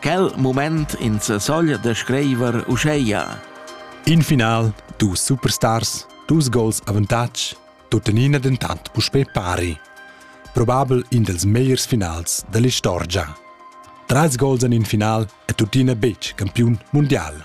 Quel moment in sesogl da scriver uscheia. In final, dus superstars, dus gols avantatg, tuttenina dentant puspè pari. Probabel in dels megliers finals dell'istorgia. Trais gols en in final è tuttina betg campiun mundial.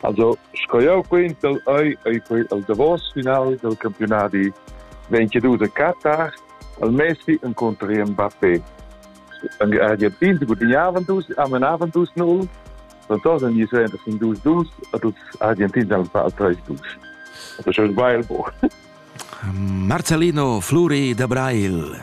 Also, sco jau quentel ei ei quei el davos final del campionadi 22 de Katar al Messi incontra Mbappé. An Argentin gudignavon dus amenavan dus 0 Fantosa ni se in dus dus a dus Argentins al fa treis dus. Das ist ein Weilbuch. Marcellino Fluri de Brail.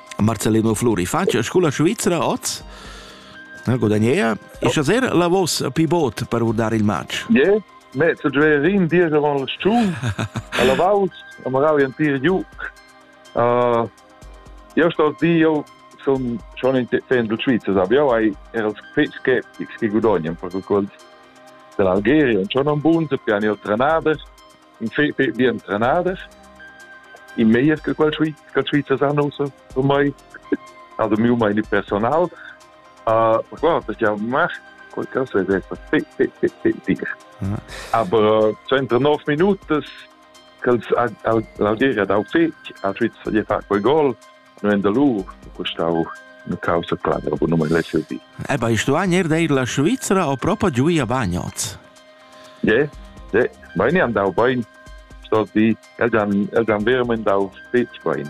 Marcellino Fluri facia scola svizra oz? Na, gudagnea. E schaser la vos pivot per vurdar il match? Yeah. Me, zu Gverin, dir avant il sciun, a la vaus, a magari ein tir giu. Uh, io sto di, io son schon in fan du Schweizer, aber io hai er als che che gudognan per qualcosa dell'Algeria, und schon un buon, so piani ho trenader, in fetg bien trenader in meier che quel che Schweizer san also für mai also mir meine personal uh, qua das ja macht qualcosa è detto aber 39 minuten als Algeria da fetg a Schweizer gli fa quel gol no en da lur custau una causa clara bu non me servir. Eh bei stuagner deir la Svizzera o propa giù a bagnots. Je, de, meine am dau bein sto di el dan el dan vermen dau stets bein.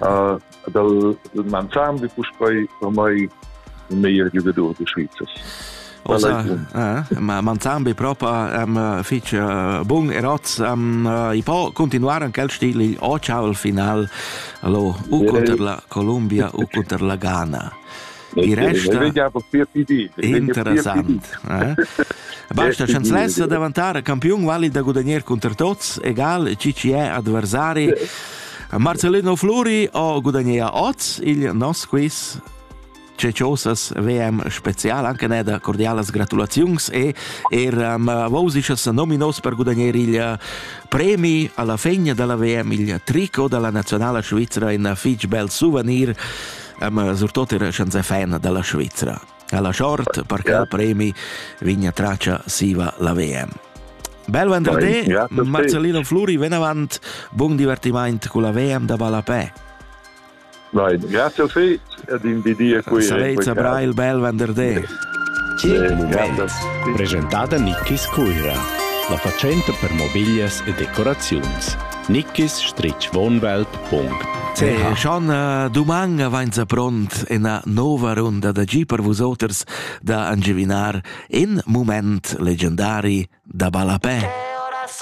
Uh, dal man sam vi puspei per mai un meier giugador de Schweizers. Manzan be propa am fich bun e roz am i po continuar an quel stil o ciao al final lo u conter la Columbia u conter la Ghana. Il resta interessant. Basta chanzlessa davantare campion valid da gudagnare contro tots, egal chi ci è adversari. Marcellino Fluri o gudagnea oz il nos quiz Ceciosas VM spezial anche neda cordialas gratulaziuns e er um, vausichas nominos per gudagnare il eh, premi alla fegna della VM il tricot della nazionale svizzera in fitch bel souvenir um, surtut er chanza fan della Svizzera. Alla short per che il premi vigna traccia siva la VM. Bel venderdì, Marcellino Fluri, ven avanti, buon divertimento con la VM da Balapè. Nein, grazie a te ed in di dir qui. Salvezza Brail bel venderday. Presentada Nickis Cuira, la facenta per mobiglias e decoraziuns. nickis-wohnwelt.ch Schon äh, doman vainsa pront ena nova runda da gi per vusoters da angivinar in moment legendari da ballapè.